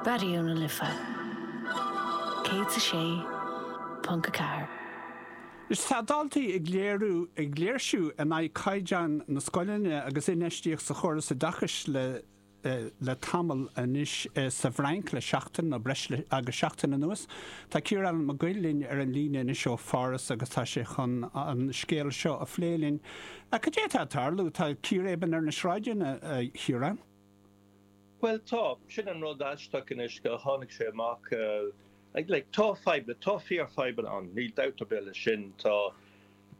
Raidió na Life 106.4. Is tá daltaí ag léiriú ag léirsiú in aghaidh caighdeán na scoileanna agus infheistíocht sa chóras oideachais le tamall anois sa bhFrainc le seachtain nó breis agus seachtain anuas. Tá Ciarán Mac Goill linn ar an líne anois ó Pháras agus tá sé chun an scéal seo a phlé linn. Cad é atá ag tarlú? Tá círéibean ar na sráideanna, a Chiaráin. Bhuel, tá. Sin an rud aisteach anois gur tháinig sé amach. Like, tá fadhbanna, tá fíorfhadhbanna ann, níl dabht ar bith leis sin. Tá,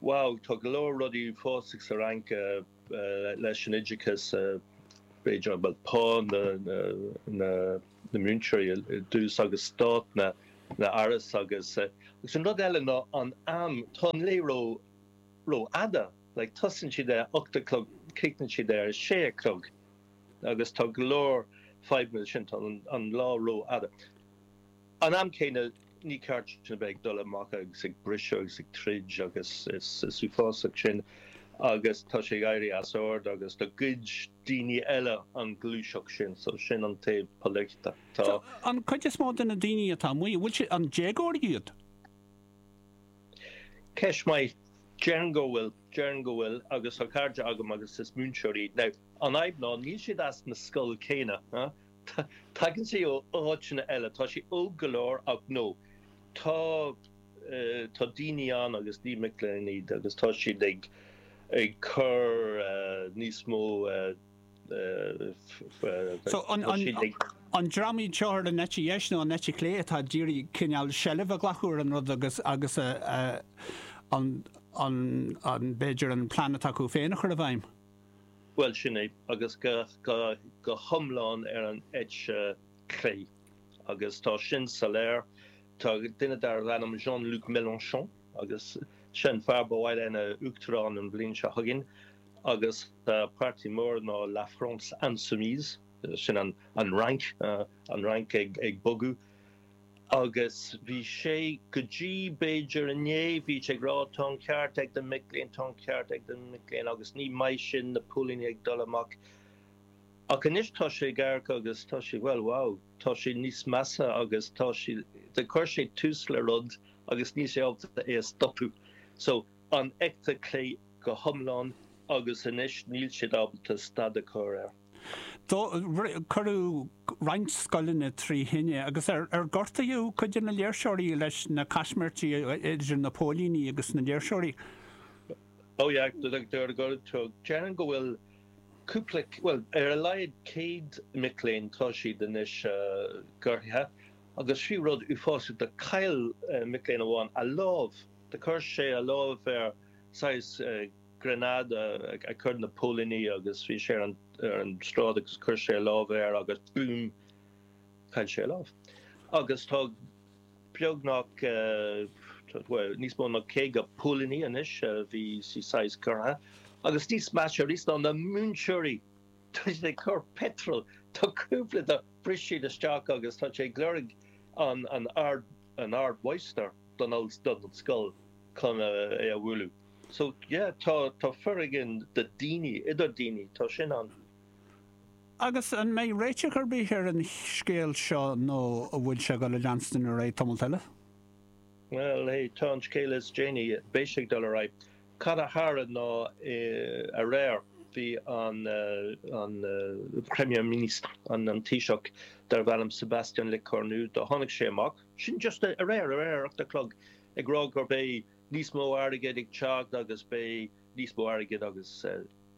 wow, tá go leor rudaí uafásach sa Fhrainc leis an oideachas, b'fhéidir, bhuel, pá na múinteoirí ar dtús agus staid na n-áras agus an rud eile ná an am, tá an lá rófhada. Like, tosaíonn siad a hocht a chlog, críochnaíonn siad ar a sé a chlog, agus tá go leor fadhbanna leis sin, tá an lá rófhada. An am céanna, ní ceart a bheith ag dul amach agus ag briseadh agus ag troid agus is uafásach sin agus tá sé ag éirí as ord agus do ghoid daoine eile an ghluaiseacht sin, so sin an taobh polaitiúil. Tá. An cuid is mó de na daoine atá amuigh, an bhfuil siad, an déagóirí iad? Ceist maith. Déarfainn go bhfuil. Déarfainn go bhfuil agus tá cairde agam agus is múinteoirí iad. Now, an fhadhb ná níl siad as na scoil céanna. Tagann siad ó áiteanna eile. Tá siad óg go leor ach no. Tá, tá daoine ann agus ní mic léinn iad agus tá siad ag, ag cur níos mó, So, an dream iad seo ar an eite dheis nó an eite chlé atá ag iarraidh cineál seilbh a ghlacadh ar an rud agus agus an, b'fhéidir, an plean atá acu féin a chur i bhfeidhm? Bhuel, sin é, agus go hiomlán ar an eite chlé, agus tá sin soiléir. Tá duine darbh ainm Jean-Luc Mélenchon, Agus seo an fear ba mhaith leis a bheith ina uachtarán an bhliain seo chugainn, agus páirtí mór ná La France Insoumise, sin an Fhrainc, an Fhrainc ag bogadh. Agus bhí sé, go dtí b'fhéidir inné, bhí sé ag rá, tá an ceart ag na mic léinn, tá an ceart ag na mic léinn, agus ní maith sin, na póilíní ag dul amach. Ach anois tá sé ag amharc agus tá sé, bhuel, wow. tá sé níos measa agus tá sé, chuir sé tús le rud agus níl sé ábalta é a stopadh. So, an eite chlé go hiomlán agus anois níl siad ábalta stad a chur air. Dódh, cuireadh roinnt scoileanna trí thine agus ar, ar, gortaíodh cuid de na léirseoirí leis na caismirtí idir na póilíní agus na léirseoirí. Oh yeah, go dtí, déarfainn go bhfuil Cúpla, bhuel, ar a laghad céad mic léinn, tá siad anois gortaithe. Agus bhí rud uafásach, do chaill mac léinn amháin a lámh, do chuir sé a lámh ar saghas gránáide a chuir na póilíní agus bhí sé ar an tsráid agus chuir sé a lámh air agus búm, chaill sé a lámh. Agus tá. beagnach, bhuel, níos mó ná caoga póilíní anois, a bhí saghas gortaithe, agus níos measa arís ná na múinteoirí, tá siad ag cur petrol, tá cúpla do bhris siad isteach agus tá siad ag lorg an an ardmháistir don don scoil chun é a bhualadh. So, yeah, tá tá foréigean do daoine idir daoine, tá sin ann. Agus an mbeidh réiteach ar bith ar an scéal seo nó an bhfuil sé ag dul a leanstan ar aghaidh tamall eile? Bhuel, hey, tá an scéal is déanaí, beidh sé ag dul ar aghaidh. Cad a tharla ná aréir bhí an Premier Ministre, an Taoiseach darbh ainm Sebastian Le Cornu, do tháinig sé amach, sin just aréir, aréir ar ocht a chlog, ag rá go mbeidh níos mó airgid ag teacht agus beidh, Níos mó airgid agus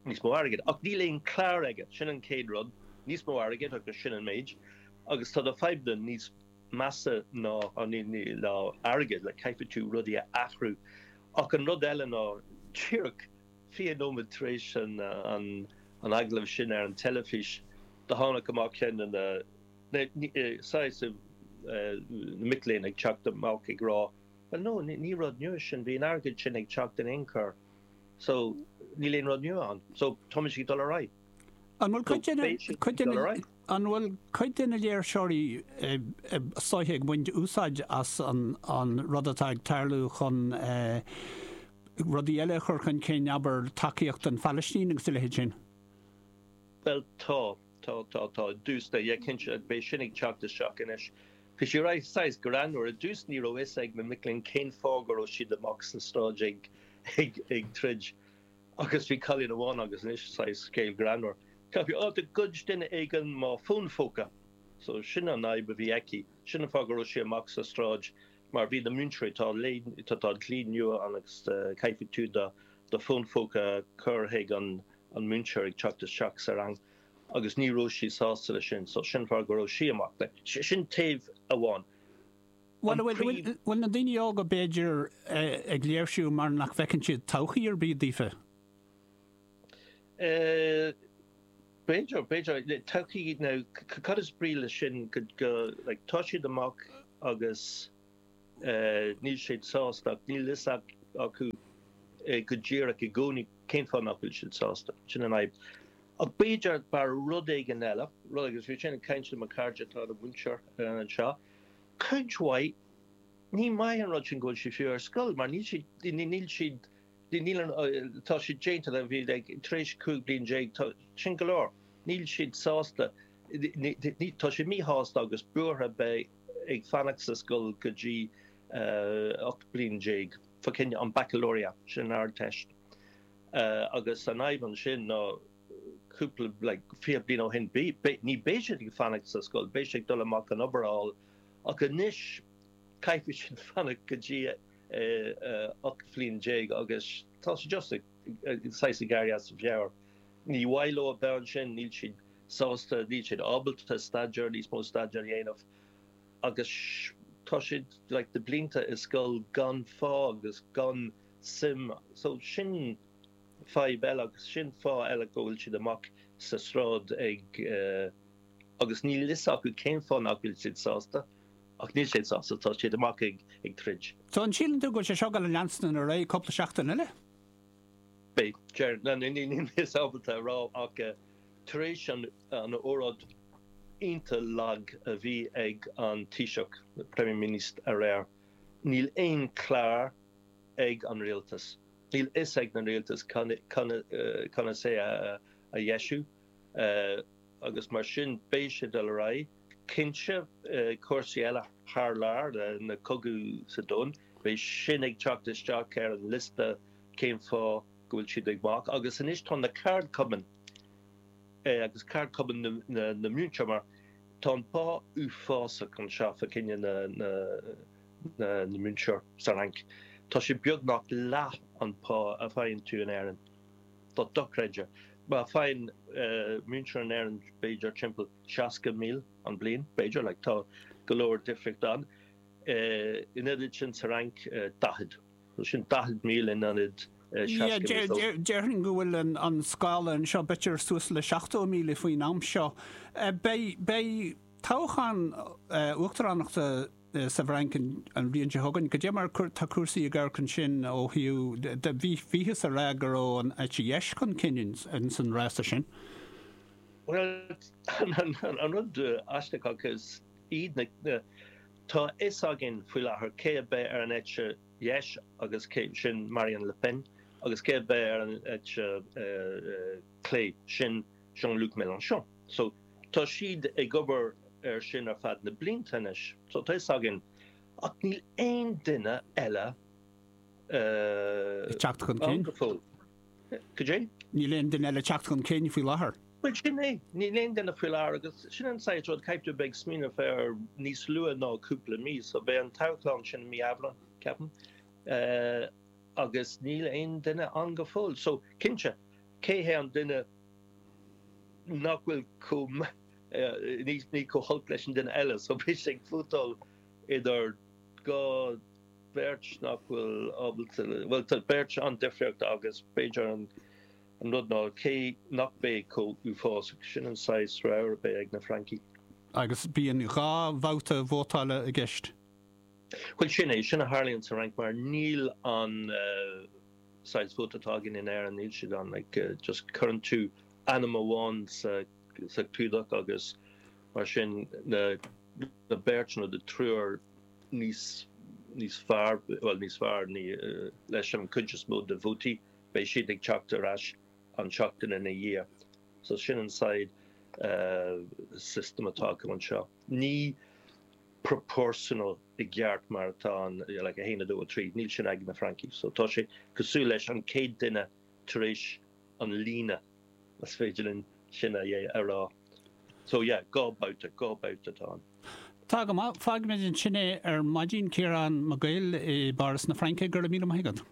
níos mó airgid. Ach níl aon chlár aige, sin an chéad rud. Níos mó airgid agus sin an méid. Agus tá do fhadhbanna níos measa ná ná airgead, like caithfidh tú rudaí a athrú. Ach an rud eile ná, díreach 20 nóiméad tar éis an agallaimh sin ar an teilifís, do tháinig amach ceann de na, saghas, na mic léinn ag teacht amach ag rá, Bhuel no, ní rud nua é sin, bhí an airgead sin ag teacht in aon chor so níl aon rud nua ann, so táimid ag dul ar aghaidh. An bhfuil cuid de na, cuid de na, an bhfuil cuid de na léirseoirí seo ag baint úsáid as an, an rud atá ag tarlú chun eh, rudaí eile a chur chun cinn, abair tacaíocht don Phalaistín agus a leithéid sin? Bhuel tá. Tá, tá, tá, i dtús, tá, yeah, cinnte, beidh sin ag teacht isteach anois. Bhí sé right, saghas, greannmhar. I dtús ní raibh fhios ag na mic léinn cén fáth go raibh siad amach sa tsráid ag, ag, ag troid. Agus bhí cailín amháin agus anois, saghas, scéal greannmhar. Caithfidh, ah, do ghoid duine éigin mo fón phóca. So, sin an fhadhb a bhí aici. Sin an fáth go raibh sí amach sa tsráid. mar bhí na múinteoirí, tá, tá dlí nua ann agus caithfidh tú do fón phóca a chur chuig an múinteoir ag teacht isteach sa rang agus ní raibh sí sásta leis sin so sin fáth go raibh sí amach. Sin taobh amháin. An príomh. Bhfuil na daoine óga b'fhéidir ag léirsiú mar nach bhfeiceann siad todhchaí ar bith daofa? B'fhéidir, b'fhéidir. Todhchaí, now, cad is brí leis sin, go, like, tá siad amach agus níl siad sásta, ach níl a fhios acu go díreach i gcónaí cén fáth nach bhfuil siad sásta, sin an fhadhb. Ach b'fhéidir, b'fhearr rud éigin eile, rud éigin, agus bhí mé ag caint le mo chara atá ina mhúinteoir anseo, cuid mhaith, ní maith an rud sin go bhfuil siad fiú ar scoil, mar níl siad, níl siad, Níl an, tá siad déanta, leibhéal, ag tar éis 15 bliain, tá, sin go leor. Níl siad sásta, ní, tá siad míshásta agus buartha bheith ag fanacht sa scoil go dtí 18 bliain, fá choinne an baccalauréat, sin an Ardteist. Agus an fhadhb ansin ná cúpla, like, 20 bliain ó shin, ní beidh siad ag fanacht sa scoil, beidh siad ag dul amach chun obair a fháil. Ach anois, Caithfidh siad fanacht go dtí 18 bhliain agus tá siad just ag saghas ag éirí as a meabhair. Ní mhaith leo a beith ansin, níl siad sásta, níl siad ábalta staidéar, níos mó staidéar a dhéanamh agus tá siad like dhá bhlianta i scoil gan fáth agus gan suim so sin fadhb eile agus sin fáth eile go bhfuil siad amach sa sráid ag agus níl fhios acu cén fáth nach bhfuil siad sásta. Ach níl siad sásta, tá siad amach ag troid. So an síleann tú go bhfuil sé seo ag dul a leanúint ar aghaidh cúpla seachtain eile? Beidh, deir na ndaoine níos ábalta a rá, ach tar éis an óráid iontach lag a bhí ag an Taoiseach, Premier Ministre aréir, níl aon chlár ag an rialtas. Níl fhios ag an rialtas conas é a dheisiú. agus mar sin beidh sé ag dul ar aghaidh. Cinnte, cúrsaí eile thar lear, na cogaidh sa domhan, beidh sin ag teacht isteach ar an liosta cén fáth go bhfuil siad ag dul amach. Agus anois tá na ceardchumainn, agus ceardchumainn na múinteoirí, mar tá an pá uafásach anseo, fá choinne na múinteoir sa Fhrainc, tá sé beagnach leath an pá a bhfaigheann tú in Éirinn. Tá dochreidte. Má faigheann múinteoir in Éirinn b'fhéidir timpeall 60 míle an bliain, b'fhéidir, like, tá go leor difríocht ann. In ionad sin sa Fhrainc, 40. So sin 40 míle in ionad 60 míle. So. Déarfainn go bhfuil an scála anseo, b'fhéidir suas le 70 míle faoin am seo. Beidh toghchán uachtaránachta. sa bhFrainc an bhliain seo chugainn. Goidé mar tá cúrsaí ag amharc ansin ó thaobh de, bhíothas ag rá go raibh an eite dheis chun cinn ins an rása sin. Bhuel, an rud aisteach acu siúd na, tá a fhios againn faoi láthair cé a beidh ar an eite dheis agus cé, sin Marine Le Pen, agus cé a beidh ar an eite chlé, sin, Jean-Luc Mélenchon. So, tá siad ag obair ar sin ar fad na blianta anois, so tá a fhios againn, ach níl aon duine eile ag teacht chun cinn. Cad é? Níl aon duine eile ag teacht chun cinn faoi láthair. Bhuel sin é, níl aon duine faoi láthair agus sin an saghas rud caithfidh tú bheith ag smaoineamh air níos luaithe ná cúpla mí, so beidh an toghchán sin i mí Aibreán, ceapaim, agus níl aon duine ann go fóill. So, cinnte, Cé hé an duine nach bhfuil chomh, ní, chomh holc leis an duine eile? So beidh siad ag vótáil idir dhá, beirt nach bhfuil ábalta, bhuel, tá beirt an-difriúil agus b'fhéidir an rud ná cé nach mbeidh chomh uafásach, sin an saghas rogha a beidh ag na Francaigh. Agus bíonn dhá bhabhta vótála i gceist? Bhuel, sin é, sin a tharlaíonn sa Fhrainc mar níl an. saghas vóta atá againn in Éirinn, níl sé ann, like just cuireann tú ainm amháin sa clúdach agus mar sin na beirt nó na triúr níos níos fearr, bhuel níos fearr ní leis an chuid is mó de vótaí, beidh siad ag teacht ar ais an tseachtain ina dhiaidh. So sin an saghas system atá acu anseo. ní proportional i gceart mar atá an like a haon, a dó, a trí, níl sin ag na Francaigh so tá sé cosúil leis an chéad duine tar éis an líne más féidir linn sin a yeah a rá so yeah dhá bhabhta, dhá bhabhta atá ann. Tá go maith, fágfaimid ansin é ar maidin, Ciarán Mac Guill i bPáras na Fraince, go raibh míle maith agat.